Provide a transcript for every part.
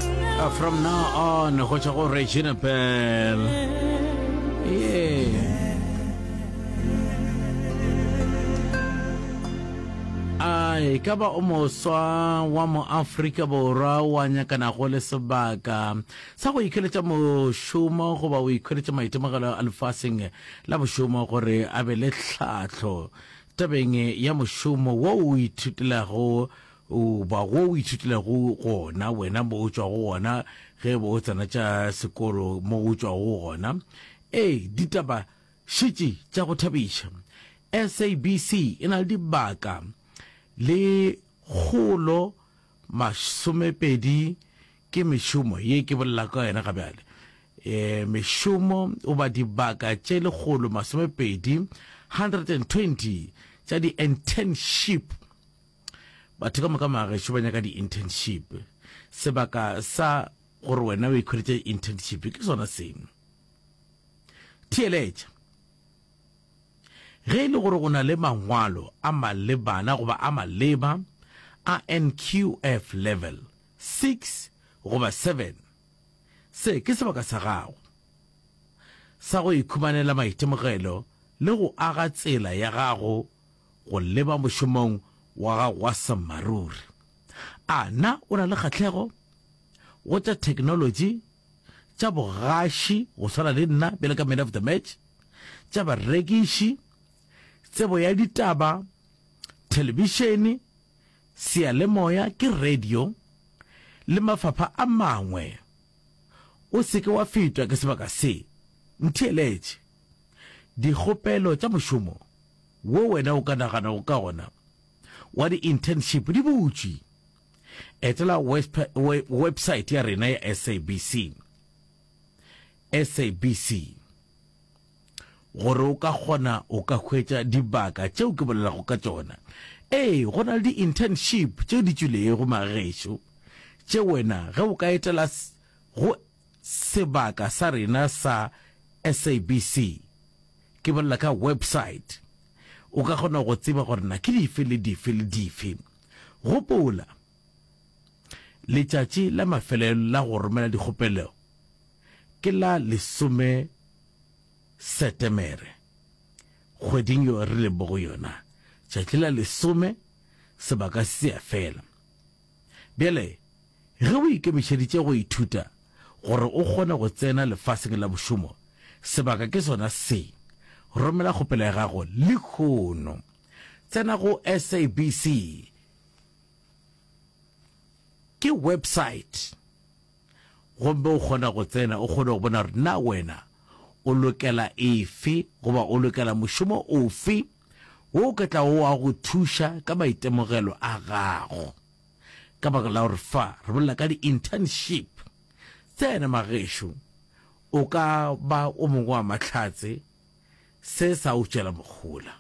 Uh, from now on go tšwa go regina bell yeah. ai ka ba o moswa wa moafrika borwa wa nyakanago le sebaka sa go ikheletša mošomo goba o ikheletša maitemogelo a lefaseng la bošomo gore a be le tlhahlo tabeng ya mošomo wo o ithutelago goba go o ithutilego gona wena mo o tšwago gona ge e be o tsena tša sekolo mo o tšwago gona. Ee, ditaba šetše tša go thabiša. SABC e na le dibaka le kgolo masomepedi ke mešomo ye ke bolela ka yona ga bjale. E, mešomo goba dibaka tše lekgolo masomepedi, 120, tša di-internship. Batho ka moka magaešo ba nyaka di-internship. Sebaka sa gore wena o ikhweditše internship ke sona seno. Theeletša. Ge e le gore o na le mangwalo a malebana goba a maleba a NQF level 6 goba 7, se ke sebaka sa gago sa go ikhumanela maitemogelo le go aga tsela ya gago go leba mošomong wa gago wa sammaruri. A na o na le kgahlego go tša theknolotši, tša bogaši go swana le nna bjale ka Man of the Match, tša barekiši, tsebo ya ditaba, thelebišene, seyalemoya ke radio, le mafapha a mangwe? O se ke wa fetwa ke sebaka se. Ntheeletše. Dikgopelo tša mošomo wo wena o ka naganago ka ona wa di-internship di butšwe. Etela website ya rena ya SABC, SABC, gore o ka kgona o ka hwetša dibaka tšeo ke bolelago ka tšona. Ee, go na le di-internship tše di tšwilego magešo tše wena ge o ka etela go Sebaka sa rena sa SABC, ke bolela ka website, o ka kgona go tseba gore na ke dife le dife le dife. Gopola, letšatši la mafelelo la go romela dikgopelo ke la lesome Setemere kgweding yo re leng mo go yona. Tšatši la lesome sebaka se a fela. Bjale, ge o ikemišeditše go ithuta gore o kgone go tsena lefaseng la mošomo, sebaka ke sona se. Romela kgopelo ya gago lehono. Tsena go SABC. Ke website. Gomme o kgona go tsena, o kgone go bona gore na wena o lokela efe, goba o lokela mošomo ofe. Wo o ka tlago wa go thuša ka maitemogelo a gago. Ka baka la gore fa re bolela ka di-internship, tsena magešo, o ka ba o mongwe wa Mahlatse se sa o tšela mohola.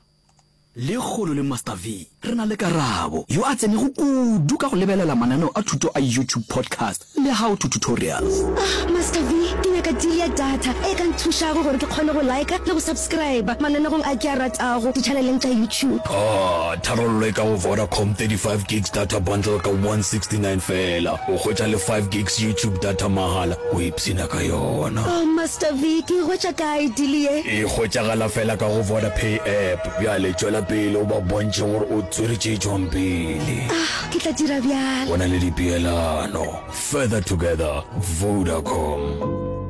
Lekgolo le Master V, re na le Karabo, yo a tsenego kudu ka go lebelela mananeo a thuto a YouTube podcast. Le how to tutorials. Ah Master V, ke nyaka deal ya data e ka nthušago gore ke kgone go liker le go subscriber mananegong a ke a ratago di-channeleng tša YouTube. Ah, tharollo e ka go Vodacom, 35 gigs data bundle ka 169 feela, o hwetša le 5 gigs YouTube data mahala, o ipshina ka yona. Oh Master V, ke e hwetša kae deal ye? E hwetšagala feela ka go Vodapay app. Bjale tšwela pele o ba bontšhe gore o tswere tše tšwang pele. Ah, Ke tla dira bjalo. Go na le dipeelano. Further together, Vodacom.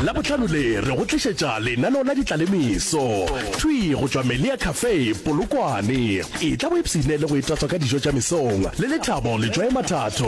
Labohlano le re go tlišetša lenaneo la ditlalemeso thwi go tšwa Melia Cafe Polokwane. Etla o ipshine le go itatswa ka dijo tša mesong le lethabo le tšwaye mathatho.